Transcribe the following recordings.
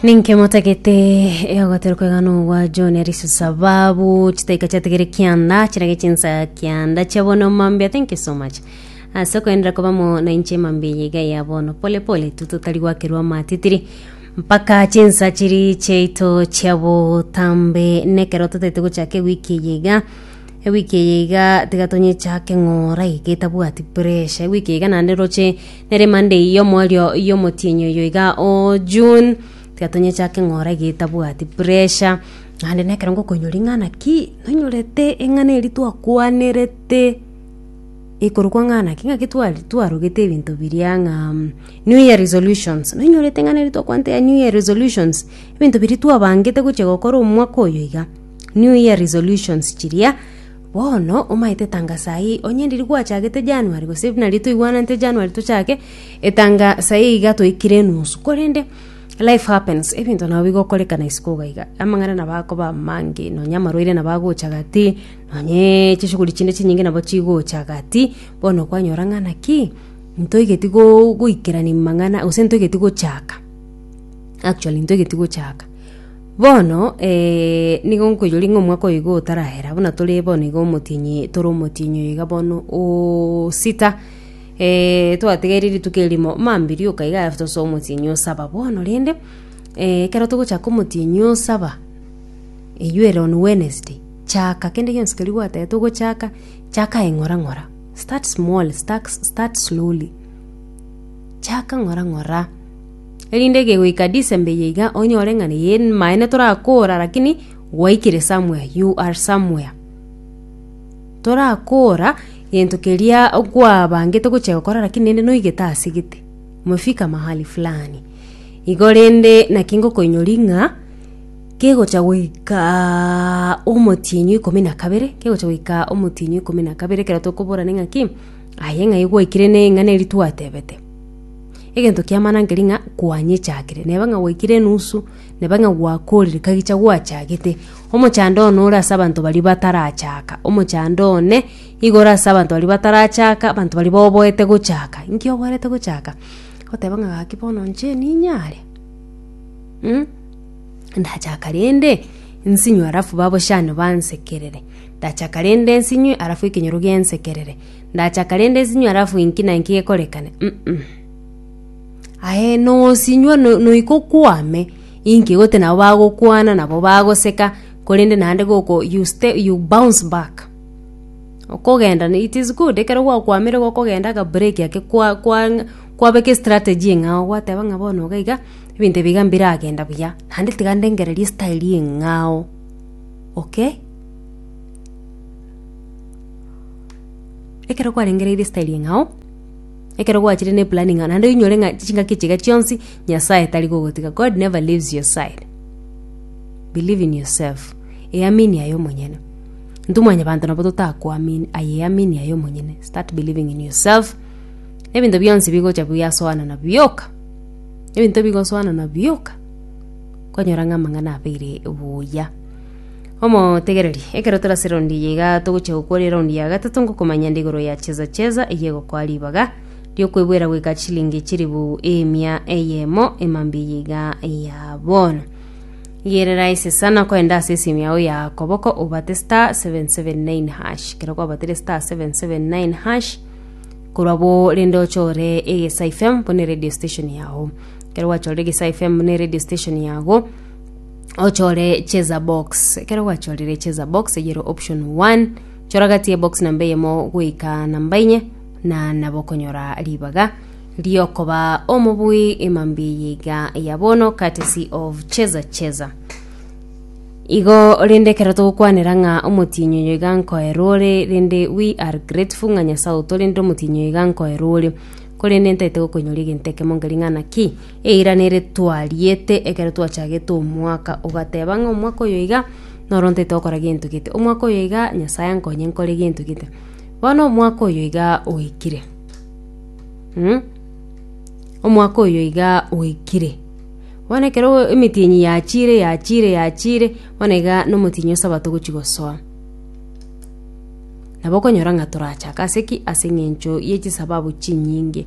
Ninki motagete ogotera kwegana ogwa John Alice sababu chitaika chategere kianda chirage chinsa kianda chia bono mambia thank you so much ase koendera kobamo na inche mambia yiga ya bono pole pole tu totari gwakerwa matitiri mpaka chinsa chiri chiaito chia botambe nekero totaete gochaka ewiki eye iga ewiki eye iga tiga tonyichake ng'ora iga etabwati pressure ewiki eye iga naende roche Nere Monday y'omoerio y'omotienyi oyo iga o June, tiga tonyechake ng'ora getabwati pressure. Naende na ekero ngokonyori ng'a naki nonyorete eng'ana eria twakwanerete ekorokwa ng'a naki ng'aki twari twarogete ebinto biria ng'a New Year Resolutions. Nonyorete eng'ana eria twakwanete ya New Year Resolutions, ebinto biria twabangete gochia gokora omwaka oyo iga. New Year Resolutions chiria. Bono omaete tanga saii, onye ndiri gwachagete January gose nari toigwananete January tochake etanga saii iga toikire enusu korende life happens ebinto nabo bigokorekana isiko iga iga amang'ana nabo akoba amange nonya amarwaire nabo agocha gati nonye chishughuli chinde chinyinge nabo chigocha gati bono kwanyora ng'a naki ntoigeti go goikerania mang'ana gose ntoigeti gochaka actually ntoigeti gochaka. Bono, ee, nigo nkoiroria ng'a omwaka oyoigo otarahera, buna tore bono iga omotienyi, tore omotienyi oyoiga bono o sita, ee, twategeire rituko erimo, mambi rioka iga alafu tose omotienyi o saba. Bono rende, ee, ekero togochaka omotienyi o saba, eywo ere on Wednesday, chaka kende gionsi keria gwatagete ogochaka, chaka aye ng'ora ng'ora. Start small, start slowly. Chaka ng'ora ng'ora. erinde kegoika December eye iga onyore ng'a neye maene torakora lakini gwaikire somewhere you are somewhere. Torakora gento keria kwabangete gochia gokora lakini naende noigete ase gete umefika mahali fulani. Igo rende naki ngokoinyori ng'a kegocha goikaaa omotienyi o ikomi na kabere kegocha goika omotienyi o ikomi na kabere ekero tokoborane ng'aki aye ng'ai gwaikire ne ing'ana eri twatebete. Egento kiamana nkeri ng'a kwanyechakire, neba ng'a gwaikire enusu, neba ng'a gwakorire kagicha gwachagete. Omochando one ore ase abanto baria batarachaka, omochando one igo ore ase abanto baria batarachaka, abanto baria baoboete gochaka. Nki oboerete gochaka? Goteba ng'a gaki bono inche ninyare mh, ndachaka rende nsinywe alafu babochani bansekerere, ndachaka rende nsinywe alafu ekenyoro gensekerere. Ndachaka rende nsinywe alafu inki na inki gekorekane? Mm-mm. Aye nosinywa no- noiko kwame inki gote nabo bagokwana nabo bagoseka korende naende goko you stay you bounce back okogenda ne- it is good ekero gwakwamire gokogenda akabureki ake kwa- kwang- kwabeka estrategy eng'ao gwateba ng'a bono iga iga ebinto ebi iga mbiragenda buya naende tiga ndengereria estyle eng'ao okay. ekero kwarengereirie esitairi eng'ao, ekero gwachire na eplani ng'a naende oinyore ng'a chingaki chiga chionsi Nyasaye tari kogotiga, God never leaves your side. Believe in yourself, eamini aye omonyene. Intwe mwanyabanto nabo totakoamini, aye eamini aye omonyene, start believing in yourself, ebinto bionsi bigocha biasoana na bioka, ebinto bigosoana na bioka, kwanyora ng'a amang'ana abeire buya. Omotegereri, ekero tore ase raundi eye iga togochia gokworia eraundi ya gatato ngokomanya nde igoro ya Cheza Cheza eye egokoa ribaga riokwebwera goika chilingi chilifu emia eyemo emambia eye iga ya bono. Igerera ise sana koenda ase esimu yao ya koboko obate star 779 hash kero kwabatire star 779 hash korwa bo rende ochore egesa fm bone radio station yao kero gwachorire egesa fm bone radio station yago ochore cheza box ekero gwachorire cheza box eyere option 1 chora gati ye box namba eyemo goika namba inye na nabo okonyora ribaga riokoba omobui imambi yiga ya bono courtesy of cheza cheza igo rende ekero togokwanera ng'a omotinyi oyo iga nkoera ore rende we are grateful ng'a nyasaye otorende omotinyi oyo iga nkoera ore korende ntaete gokonyoria egento ekemo nkoria ng'a naki Eira nere twariete ekero twachagete omwaka, ogateba ng'a omwaka oyo iga noro ntaete gokora gento gete, omwaka oyo iga Nyasae ankonye nkore gento gete. Bono omwaka oyo iga oikire, mm, omwaka oyo iga oikire, bono ekero emetienyi yachire yachire yachire, bono iga na omotienyi o sabato ogochia gosoa. Nabo okonyora ng'a torachake ase ki? Ase eng'encho ye chisababu chinyinge.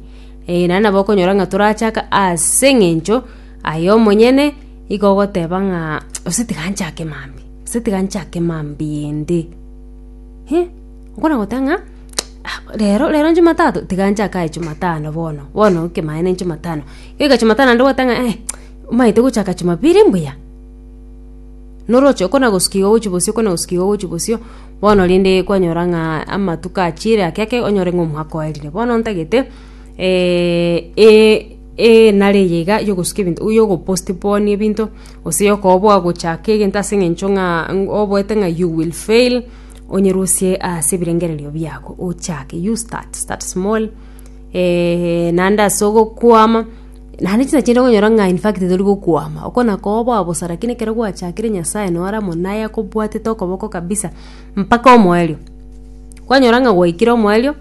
Ee, naende nabo okonyora ng'a torachake ase eng'encho aye omonyene igo ogoteba ng'a gose tiga nchake mambia, gose tiga nchake mambia ende. Hi, okona goteba ng'a rero rero nchumatato tiga nchake aye chumatano bono, bono ekemaene nchumatano. Egeka chumatano naende ogoteba ng'a eh, omanyete gochaka chumapiri mbuya? Noroche okona gosuka igo ogochia bosio okona gosuka igo ogochia bosio. Bono rende kwanyora ng'a amatuko achiire ake ake onyore ng'a omwaka oerire bono ntagete enare eye iga yogosuka ebinto yogopostpone ebinto gose yokoba bwagochaka egento ase eng'encho ng'a oboete ng'a you will fail onyerusie ase ebirengererio biago ochake you start, start small naende ase ogokwama. Naende tinachete konyora ng'a in fact tori gokwama. Oko nakoba bosa lakini ekero gwachakire Nyasae nore amo naye akobwatete okoboko kabisa mpaka omoerio. Kwanyora ng'a gwaikire omoerio,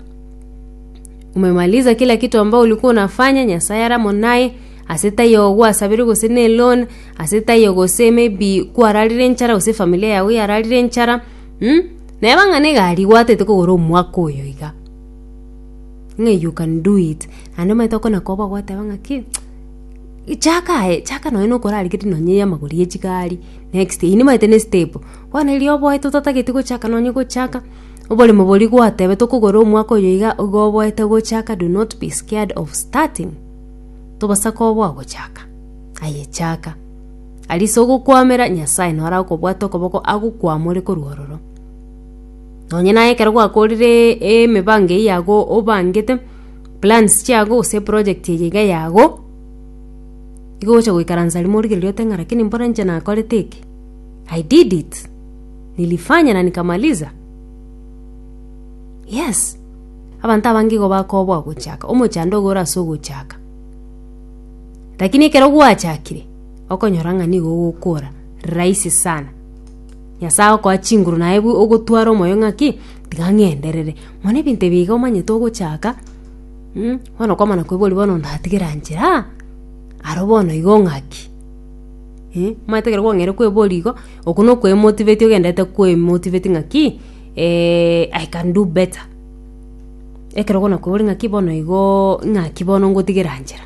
umemaliza kila kitu ambao ulikuwa unafanya, Nyasae are amo naye, ase tai oo gwasabeire gose na eloan, ase tai oo gose maybe kwararire enchara gose efamilia yago yararire enchara, neba ng'a na egari gwataete kogora omwaka oyo iga. ng'a you can do it naende omanyete okona koba ogoteba ng'a ki chaka aye chaka nonye na okorarigeria nonye ya amagoro ya chigari next eyio nimanyete ne step bono erio oboete otatagete gochaka nonye gochaka oboremo boria gwatebete okogora omwaka oyo iga igo oboete gochaka do not be scared of starting tobasa koba bwagochaka aye chaka arisogokwamera nyasaye noro akobwate okoboko agokwamore korwa ororo. Nonya naye ekero gwakorire emebango eyio yago obangete, plans chiago gose eproject eye iga yago, nigo ogocha goikaransa rimo origereri ote ng'a rakini mbore inche nakorete eke, I did it, nilifanya na nikamaliza. Yes, abanto abange igo bakoba ogochaka, omochando iga ore ase ogochaka. Rakini ekero gwachakire, okonyora ng'a nigo ogokora rahisi sana. Nyasae agokoa chinguru naye bu ogotwara omoyo ng'aki, tiga ng'enderere. Mono ebinto ebi iga omanyete ogochaka, bono okwamana kwe boria bono ndatigere anchera aa, aro bono igo ng'aki. Omanyete ekero kwang'eire kweboria igo, okwo na okwemotiveti ogenderete kwemotiveti ng'aki, I can do better. Ekero bono okoboria ng'aki bono igooo ng'aki bono ngotigere anchera.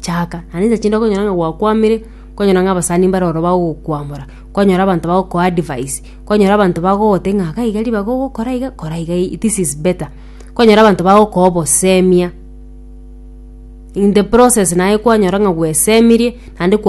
Chaka, naende inche chinde okonyora ng'a gwakwamire, okonyora ng'a abasani mbare ororo bagokwamora, okonyora abanto bagokoa advice, okonyora abanto bagotebia ng'a iga iga ribaga ogokora iga, kora iga i- this is better. Okonyora abanto bagokoa obosemia, in the process naye kwanyora ng'a gwesemirie naende kwa.